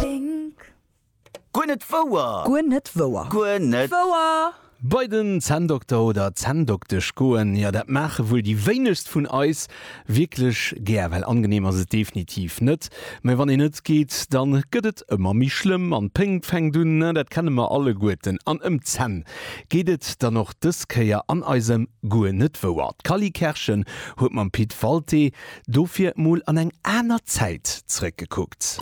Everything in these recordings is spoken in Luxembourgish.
Wink. Guer net wouer! Guer net wouer! Guer net. Wouer! Bei den Zänndokter oder Zänndoktesch goen, jo dat maache wuel déi wéinegst vun eis wierklech gär, well angeneem ass et definitiv net. Mä wann een net geet, da gëtt et ëmmer méi schlëmm an d'Pénkt fänkt un, dat kenne mer alleguerten. An ëm d'Zänn geet et dann och dës Kéier an eisem Guer net wouer. D'Cally Kerschen huet mam Pit Walté Dofir mol an eng aner Zäit zrëckgekuckt.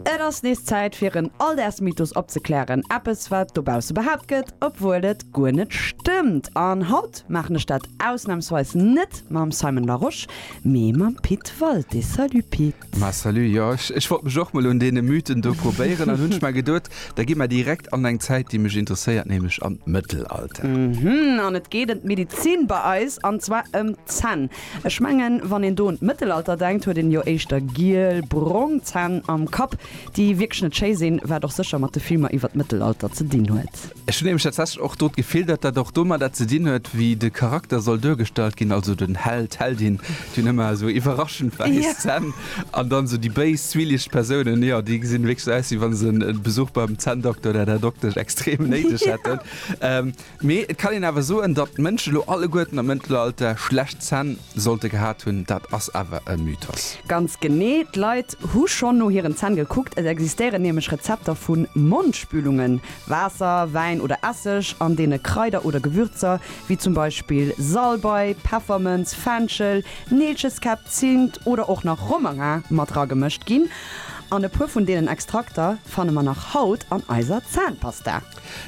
Et ass nees Zäit fir en Alldagsmythos opzeklären, eppes wat dobausse behaapt gëtt, obwuel et guer net stëmmt. An haut maachen ech dat ausnamsweis net mam Simon Larosche, mee mam Pit Walté. Salut Pit! Mä salut, jo ech ech wollt mech och mol un deene Mythen do probéieren an hunn mer geduet, da gi mer direkt an eng Zäit déi mech interesséiert, nämlech an d'Mëttelalter. Mhm, an et geet ëm d'Medizin bei eis an zwar ëm d'Zänn. Ech mengen wann een do un d'Mëttelalter denkt huet een jo éischter giel, brong Zänn am Kapp, déi wierklech net schéi sinn, wat och sécher mat de Filmer iwwer d'Mëttelalter ze dinn huet. Ech hunn nämlech tatsächlech och do d'Gefill, datt dat och domadder ze dinn huet, wéi de Charakter soll duergestallt ginn, also den Held, d'Heldin, déi hunn ëmmer esou iwwerraschend wäiss Zänn, an dann esou déi béis, zwielicht Persounen, jo, déi gesinn wierklech esou aus, wéi wa se e Besuch beim Zänndokter oder der Doktesch extrem néideg hätten. Mee et kann een awer soen, datt d'Mënschen elo alleguerten am Mëttelalter schlecht Zänn. sollte gehat hunn, dat ass awer e Mythos. Ganz genee, d'Leit hu schonn no hiren Zänn gekuckt. Et existéieren nämlech Rezepter vu Mondspülungen, Waasser, Wäin oder Esseg, an deene Kraider oder Gewürzer wéi zum Beispill Salbei, Peffermënz, Fenchel, Neelcheskäpp, Zint oder och nach Romarin mat ragemëscht ginn. An e puer vun deenen Extrakter fanne mer nach haut an eiser Zänpasta.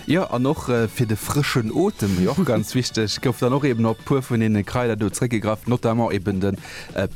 Jo, an och fir de frëschen Otem, déi och ganz wichteg, gouf dann och eben op e puer vun deene Kraider do zréckgegraff, notamment eben de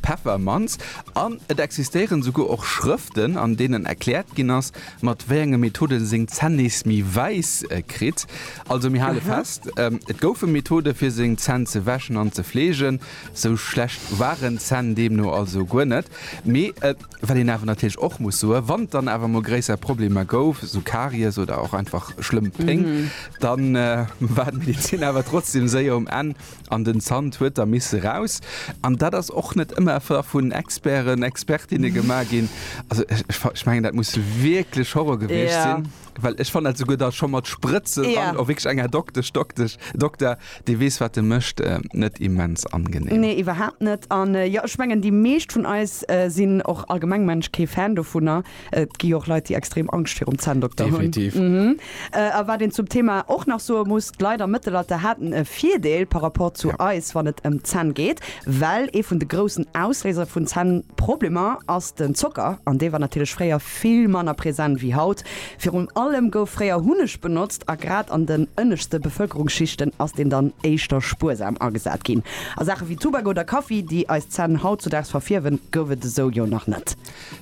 Peffermanz. An et existéieren esouguer och Schrëften, an deenen erkläert ginn ass, mat wéi enge Methode en seng Zänn nees méi wäiss kritt. Also mir hale fest, Et goufe Methode fir seng Zänn ze wäschen an ze fleegen. Esou schlecht waren d'Zänn deemno also guer net. Mee Wat een awer natierlech och muss soen, wann et dann awer emol gréisser Problemer gouf, esou Karies oder och einfach schlëmm Péng, da war d'Medezin awer trotzdeem séier um Enn an den Zant huet da misse eraus. An dat ass och net ëmmer da vun Experten, Expertinne gemaach ginn. Also ech mengen, dat muss wierklech Horror gewiescht sinn. Well ech fan souguer da scho mat Sprëtzen ja. an och wg enger Doktesch Doktesch Dokter, dee weess wat de mécht, äh, net immens angenehm. Nee, iwwerhaapt net. An äh, jo, ech mengen, déi meescht vun eis äh, sinn och allgemeng Mënsch kee Fan dovunner. Et gi jo och Leit, déi extrem Angscht virum Zänndokter hunn. Definitiv. Mhm. Äh, a wat een zum Thema och nach soe muss, d'Leit am Mëttelalter haten e Virdeel par rapport zu Ja. eis, wann et ëm d'Zänn geet, well ee vun de groussen Ausléiser vun Zännproblemer ass den Zocker, an dee war natierlech fréier vill manner present wéi haut. Virun allem gouf fréier Hunneg benotzt a grad an den ënneschte Bevëlkerungsschichten ass deen dann éischter spuersam agesat ginn. A Saache wéi Tubak oder Kaffi, déi eis Zänn hautzudaags verfierwen, gouf et esou jo nach net.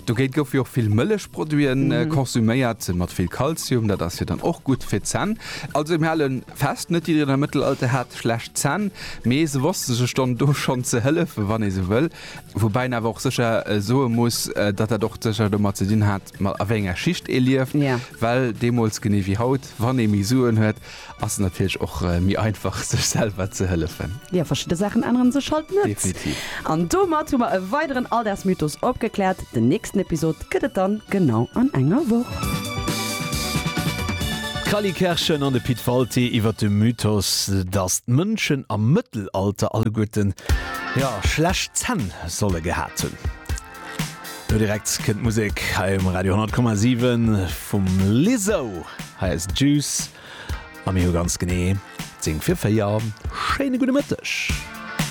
Dogéint goufe jo och vill Mëllechproduite konsuméiert, mat vill Kalzium, dat ass jo dann och gutt fir d'Zänn. Also mir hale fest, net jiddereen am Mëttelalter hat schlecht Zänn, mee se wosste sech dann do schonn ze hëllefen, wann ee sou wëll. Woubäi een awer och sécher soe muss, datt dat och sécher domat ze dinn hat, ma a wéi enger Schicht ee lieft. Well deemools, genee wéi haut, wann ee méi Suen huet, ass et natierlech och méi einfach, sech selwer ze hëllefen. Jo, verschidde Saachen ännere sech halt net. Definitiv. An domat hu mer e weideren Alldagsmythos opgekläert. Den nächsten Episod gëtt et dann genau an enger Woch. D'Cally Kerschen an de Pit Walté iwwer de Mythos, datt d'Mënschen am Mëttelalter alleguerten. Jo, schlecht Zänn soll e gehat hunn. Lo direkt kënnt d'Musek hei um Radio 10,7 vum Lizzo. Hei ass Juice a mir hu ganz genee 10 fir 4. Schéine gudde Mëtteg.